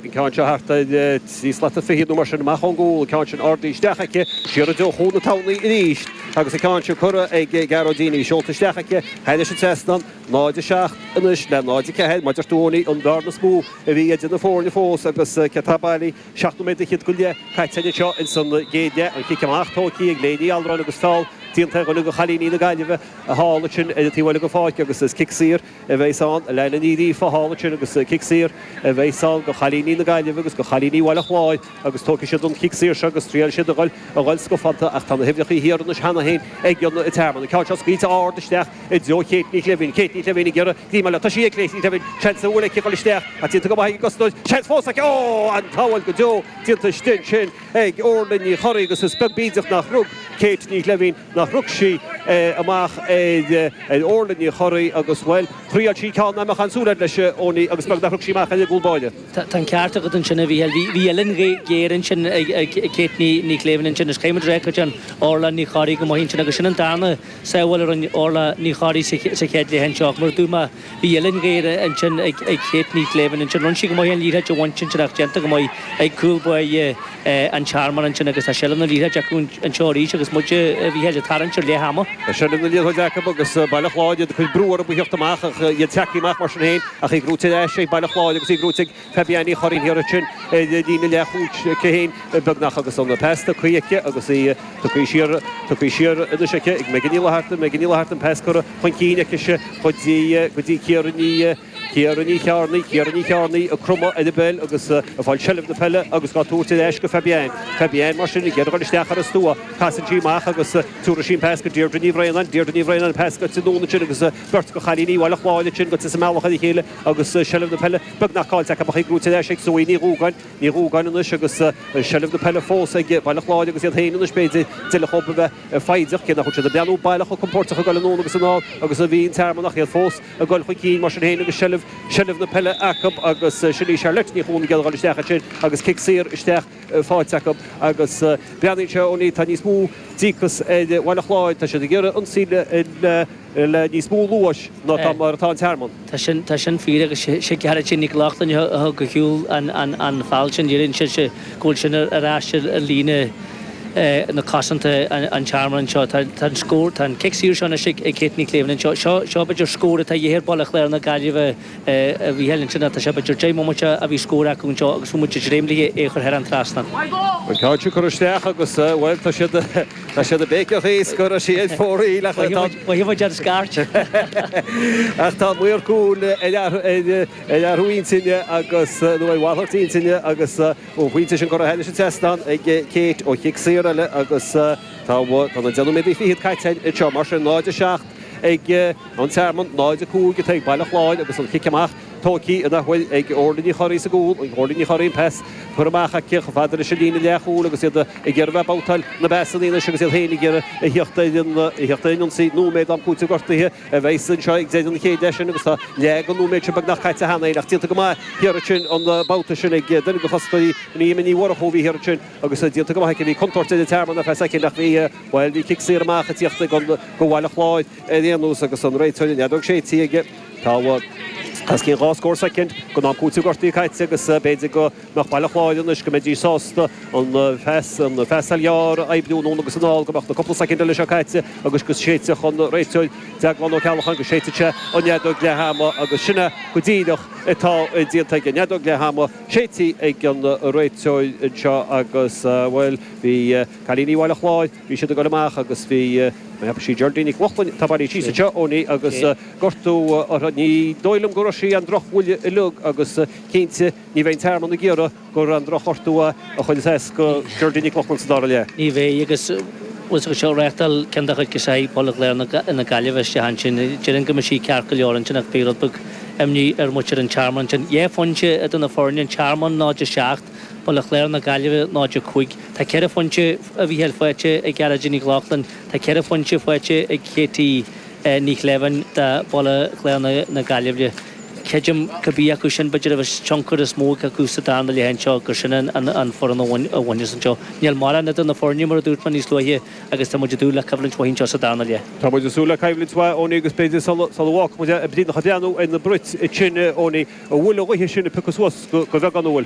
an ceann seo thart ar trí slata fichead nó mar sin amach ón gcúl, an ceann sin ardaithe isteach aici, siar i dtreo Chuan na Tamhnaí arís, agus an ceann sin curtha ag Gearóidín, í seolta isteach aici thairis an trasnán. 0, 7, anois le 0, 4, b'fhéidir gurb in í an bhearna is mó a bhí idir na foirne fós agus céard atá bailithe, seacht nóiméad fichead go leith caite anseo ins an gcéad leath. An chic amach tógtha ag Léiní Alrán agus feall déanta ar dhuine de chailíní na Gaillimhe thall ansin ar an taobh eile den pháirc agus is cic saor a bheas ann a lean an iarraidh fothábhacht sin agus cic saor a bheas ann do chailíní na Gaillimhe agus do chailíní Bhaile Chláir agus tógfaidh siad an chic saor seo agus triailfidh siad a dhul a dhul scafánta ach tá na huimhreacha thiar anois cheana féin ag an Tearmann. An ceann seo scaoilte ard isteach i dtreo Chéit Ní Shléibhín. Céit Ní Shléibhín ag iarraidh greim a fháil. Tá sí ag Céit Ní Shléibhín. Seans, bhuel, aici a dhul isteach ach déanta go maith ag an gcosnamh. Seans fós aici. Ó! An-sábháil go deo déanta istigh ansin. ag Órla Ní Chorraidh agus is beag bídeach nach rug Céit Ní Shléibhín, nach rug sí é amach ar Órla Ní Chorraidh agus, bhuel, thriáil sí ceann nach mbeadh aon súil air leis ó ní agus beag nach rug sí amach ar an gcúl báire. Tá an ceart agat ansin, a Mhícheáil. Bhí uillinn ghéar ansin ag Céit Ní Shléibhín ansin agus caithfimid a rá go dtearn Órla Ní Chorraidh go maith ansin agus sin an darna sábháil a rinne Órla Ní Chorraidh sa chéad leath anseo ach mar a dúirt mé Bhí uillinn ghéar ansin ag Céit Ní Shléibhín ansin. Rinne sí go maith an liathróid a bhaint ansin ach déanta go maith ag cúl báire An Tearmainn ansin agus tá seilbh na liathróide acu anseo arís agus muid, Mhícheál, ag tarraingt ar leath ama. Tá seilbh na liathróide acu agus Baile Chláir, iad ag cur brú orthu a thíocht amach ach iad ag teacht amach mar sin féin ach í goidte ar ais ag Baile Chláir agus í goidte ag Fabienne Ní Chuana an iarraidh sin ar líne leathchúil aici féin beagnach agus an pas tugtha aici agus í tugtha siar tugtha siar anois aici ag Megan Ní Fhlatharta Megan Ní Fhlatharta an pas curtha chun cinn aicise go dtí go dtí Ciara Ní Ciara Ní Chearnaigh Ciara Ní Chearnaigh ag cromadh ar an bpeil agus ag fáil seilbh na peile agus dhá tabhairt ar ais go Fabienne Fabienne mar sin ag iarraidh dul isteach ar an stua casann sí amach agus tabharfaidh sí an pas go Deirdre Ní Bhraonáin Deirdre Ní Bhraonáin an pas go dtí Úna sin agus beirt de chailíní Bhaile Chláir ansin ag dul sa mbealach ar a chéile agus seilbh na peile beagnach cáillte acu ach í brúite ar ais ag Zoë Ní Dhúgáin, Ní Dhúgáin anois agus seilbh na peile fós ag Baile Chláir agus iad féin anois, b'fhéidir, d'fheilfeadh dhóibh a bheith foighdeach, cé nach bhfuil siad ag breathnú baileach chomh compóirteach ag dul anonn agus anall agus a bhí an Tearmann ach iad fós ag dul chun cinn mar sin féin agus seilbh na peile acu agus sin í Charlotte Ní Chuana ag dul isteach ansin agus cic saor isteach faighte acu agus breathnaíonn sé ó tá níos mó díocas ar Bhaile Chláir, tá siad ag iarraidh ionsaí le le níos mó luais ná tá mar atá an Tearmann. Tá sin, tá sin fíor agus sé Gearóidín Nic Lochlainn a thug ar shiúl an, an, an feall sin, léiríonn sé sé, go bhfuil sin ar, ar ais ar, ar líne na cosanta an, an Tearmann anseo. Tá, tá an scór, tá an cic saor seo anois ag, ag Céit Ní Shléibhín anseo. Seo, seo b'fhéidir scór atá de dhíth ar Bhaile Chláir na Gaillimhe. Bhí Helen Trinidad de Seba Ger Jaime muid a bhí scór acu anseo agus fuair muid dréimlithe é a chur thar an trasnán. An ceann sin cur isteach agus bhuel tá siad tá siad ag béiceadh is go raibh sí ag fóraí le Mhaígh muid ar scairt. Ach tá an maor cúil ar ar athrú intinne agus nó ar mhalairt intinne agus ón phointe sin curtha thar an trasnán ag Kate ó chic saor eile agus tá tá naoi nóiméad fichead caite anseo mar sin 0-7 ag An Tearmann, 0, 5, atá ag Baile Chláir agus an chic amach tóigthe ansin ag Órla Ní Chorraidh sa gcúl, ag Órla Ní Chorraidh an pas curtha amach aici chomh fada leis an líne leathchúil agus iad ag iarraidh a bheith ag babhtáil na bpasanna anois agus iad féin ag iarraidh a theacht ar an ionsaí. Nóiméad am cúitimh gortaithe a bheas anseo ag deireadh an chéad leath seo agus tá leath den nóiméad sin beagnach caite cheana féin ach déanta go maith thiar ansin an babhta sin ag Doireann de Costa. Ní hea Eimear Ní Mhurchú a bhí thiar ansin agus déanta go maith aici. Bhí contúirt ag an Tearmann ar phas aici ach bhí, bhuel, bhí cic saor amach ag tíocht ag an, go Bhaile Chláir. ar aon nós agus an réiteoir an fheadóg séidte aige, tá muid os cionn dhá scór soicind, den am cúitimh gortaithe caite agus b'fhéidir go mbeadh Baile Chláir anois, go mbeidís sásta an phasáil ghearr a oibriú anonn agus anall, go mbeadh na cúpla soicind eile seo caite agus go séidfeadh an réiteoir, Deaglán Ó Ceallacháin, go séidfeadh sé an fheadóg leath ama agus sin é go díreach atá déanta aige, an fheadóg leath ama séidthe ag an réiteoir anseo agus, bhuel, bhí cailíní Bhaile Chláir, Bhí siad ag dul amach agus bhí mé agus bhí Geraldine Nic Lochlainn, tá bailithe síos anseo Eoiní agus gortú uirthi, ní dóigh liom go raibh sí an-drochbhuailte uilig agus cinnte ní bheidh an tearmann ag iarraidh gur an-drochghortú a chuir as do Geraldine Nic Lochlainn sa dara leath. Ní bheidh agus bhí sí díreach ag reáchtáil ceann de chuid girseacha Bhaile Chláir na Gaillimhe istigh ansin. Déarfainn go mbeidh sí ceart go leor ansin ach bhí rud beag imní ar mhuintir an Tearmainn ansin. Dhá phointe idir na foirne an tearmann 0-7, Baile Chláir na Gaillimhe 0-5. Tá ceithre phointe a Mhícheáil faighte ag Gearóidín Nic Lochlainn. Tá ceithre phointe faighte ag Katie Ní Shléibhin do Bhaile Chláir na Gaillimhe. Creidim, cibé acu sin b'fhéidir a bheas tionchar is mó acu sa darna leath anseo, gur sin an fhoireann a bhaineas anseo. Níl mórán idir na foirne, mar a dúirt mé níos luaithe, agus tá muid ag dúil le coimhlint mhaith anseo sa darna leath. Tá muid ag súil le coimhlint mhaith, Eoiní, agus b'fhéidir sula bhfágfaidh muid é freisin, ach ag breathnú ar na brait sin, Eoiní, an bhfuil an ghaoth sin ag piocadh suas go bheagán, an bhfuil?